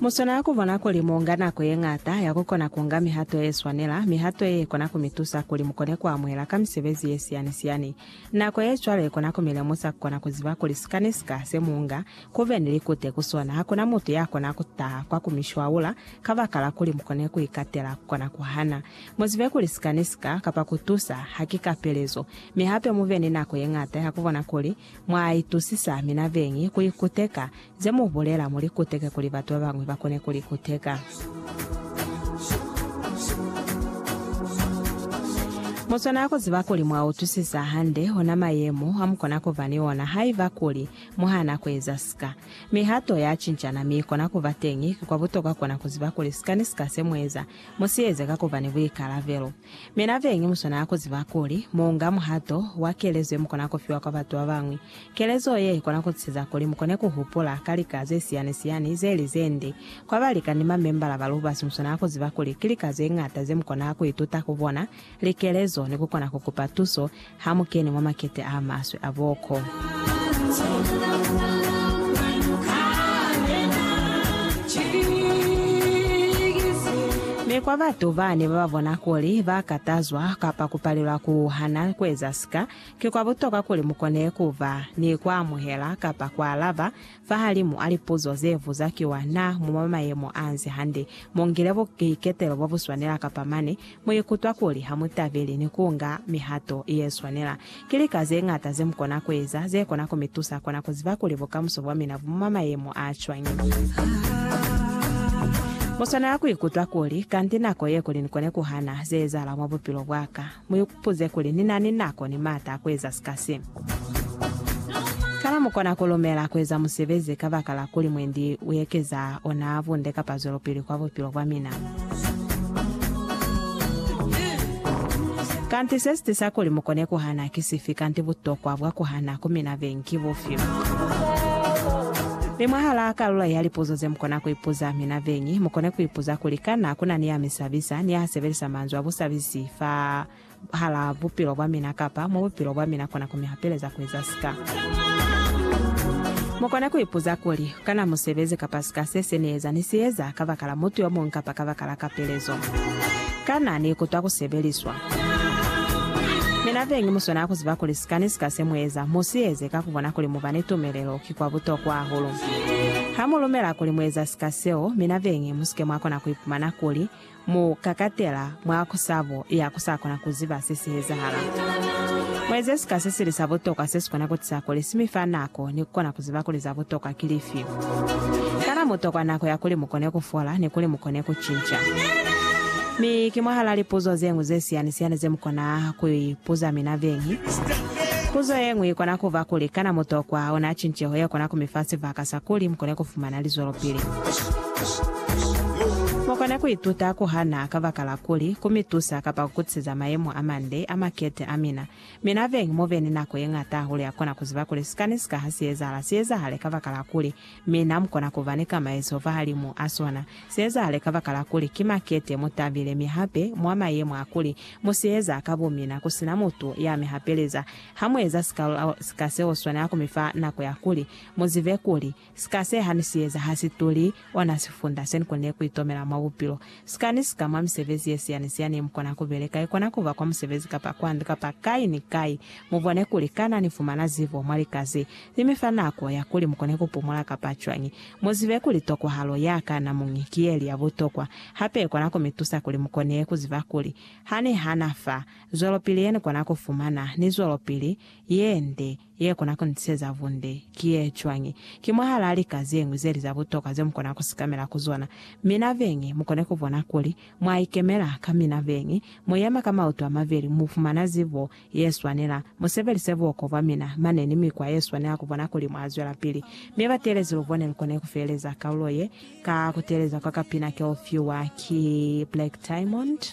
Mu swanela ku bona kuli mu nga nako ye ñata ya ku kona ku nga mihato ye swanela, mihato ye kona ku mi tusa kuli mu kone ku amuhela ka misebezi ye siyani-siyani. Nako ye cwalo i kona ku mi lemusa ku kona ku ziba kuli sika ni sika se mu nga, ku be ni likute ku sona. Ha ku na mutu ya kona ku taha kwa ku mi shwaula kabakala kuli mu kone ku ikatela ku kona ku hana. Mu zibe kuli sika ni sika, kapa ku tusa, ha ki ka pelezo. Mi hape mu be ni nako ye ñata ya ku bona kuli Mwa itusisa mina beñi ku ikuteka, ze mu bulela mu li kuteke kuli batu ba bañwi ba kone ku li kuteka. Mu swanela ku ziba kuli mwa utusisa hande ona mayemo a mu kona ku ba ni ona haiba kuli mu hana ku eza sika. Mihato ya cincana mi kona ku ba teñi. Ki kwa butokwa kona ku ziba kuli sika ni sika se mu eza, mu si eze ka ku ba ni buikalabelo. Mi nabeñi muswanela kuziba kuli muunga muhato wa kelezo yemukona kufiwa kwa batu babañwi. Kelezo ye ikona kutusiza kuli mukone kuhupula ka lika zesiyani-siyani zeli zende. Kwa balika ni mamembala ba lubasi muswanela kuziba kuli ki lika zeñata zemukona kuituta ku bona, likelezo, ni kukona kukupa tuso Ha mu kene mwa makete a maswe a boko. Mi kwa batu ba ne ba ba bona kuli ba katazwa kapa ku palelwa ku hana ku eza sika, ki kwa butokwa kuli mu kone ku ba ni ku amuhela kapa ku alaba Fahalimu a lipuzo ze vuzakiwa, Na mu mwa mayemo a nzi hande? Mu ngile buiketelo bo bu swanela kapa mane mu ikutwa kuli ha mu tabeli ni ku nga mihato ye swanela? Ki lika ze ñata ze mu kona ku eza ze kona ku mi tusa kona ku ziba kuli bukamuso bwa mina bu mwa mayemo a cwañi. Mu swanela ku ikutwa kuli, Kanti nako ye kuli ni kone ku hana ze ezahala mwa bupilo bwa ka. Mu ipuze kuli, Ni na ni nako ni maata a ku eza sika se? Kana mu kona ku lumela ku eza musebezi kabakala kuli mwendi u ekeza ona bunde kapa zwelopili kwa bupilo bwa mina? Kanti se si tisa kuli mu kone ku hana ki sifi, kanti butokwa bwa ku hana ku mina beñi ki bufi? Mi mwahalaa kalulo ya lipuzo ze mu kona ku ipuza mina beñi, mu kone ku ipuza kuli, Kana ku na ni ya mi sabisa, ni ya sebelisa manzwi a busabisi fa hala bupilo bwa mina kapa mwa bupilo bwa mina kona ku mi hapeleza ku eza sika. Mu kona ku ipuza kuli, Kana musebezi kapa sika se se ni eza ni si eza kabakala mutu yo muñwi kapa kabakala kapelezo? Kana ni ikutwa ku sebeliswa? Mina be ngi muswanela ku ziba kuli sika ni sika se mu eza, mu si eze ka ku bona kuli mu ba ni tumelelo ki kwa butokwa hahulu. Ha mu lumela kuli mu eza sika seo, mina be ngi mu si ke mwa kona ku ipumana kuli Mu kakatela mwa kusabo ya ku sa kona ku ziba se si ezahala. Mu eze sika se sili sa butokwa se si kona ku tisa kuli si mi fa nako ni ku kona ku ziba kuli za butokwa ki lifi. Kana mu tokwa nako ya kuli mu kone ku fola ni kuli mu kone ku cinca? Mi ki mwahal'a lipuzo ze ñwi ze siyani-siyani ze mu kona ku ipuza mina beñi. Puzo ye ñwi i kona ku ba kuli, Kana mu tokwa ona cinceho ye kona ku mi fa sibaka sa kuli mu kone ku fumana lizwelopili? Mu kona ku ituta ku hana kabakala kuli ku mi tusa kapa ku kutiseza mayemo a mande a makete a mina. Mi nabeñi mu be ni nako ye ñata hahulu ya ku kona ku ziba kuli sika ni sika ha si ezahala, si ezahale kabakala kuli. Mi na mu kona ku ba ni kamaezo fahalimu a sona. Si ezahale kabakala kuli ki makete mu tabile mi hape mwa mayemo a kuli mu si eza ka bomina ku si na mutu ya mi hapeleza. Ha mu eza sika, sika seo swanela ku mi fa nako ya kuli mu zibe kuli, Sika se ha ni si eza ha si tuli, ona sifunda se ni konile ku itomela mwa bupilo. Sika ni sika mwa misebezi ye siani siani ye mu kona ku beleka, i kona ku ba kwa musebezi kapa kwa ndu kapa kai ni kai, mu bone kuli kana ni fumana zibo mwa lika ze li mi fa nako ya kuli mu kone ku pumula kapa cwañi. Mu zibe kuli tokwahalo ya ka namuñi ki ye li ya butokwa, hape i kona ku mi tusa kuli mu kone ku ziba kuli ha ni hana fa, zwelopili ye ni kona ku fumana ni zwelopili ye nde. ye kona ku ni tiseza bunde ki ye cwañi? Ki mwahalaa lika ze ñwi ze li za butokwa ze mu kona ku sikamela ku zona, mi na beñi mu kone ku bona kuli mwa ikemela ka mina. Beñi mu yema ka mautu a mabeli, mu fumana zibo ye swanela, mu sebelise buoko bwa mina mane ni mikwa ye swanela ku bona kuli mwa zwelapili. Mi batelezi lu bone lu kone ku feleza kaulo ye ka ku teeleza kwa kapina ke u fiwa ki Black Diamond.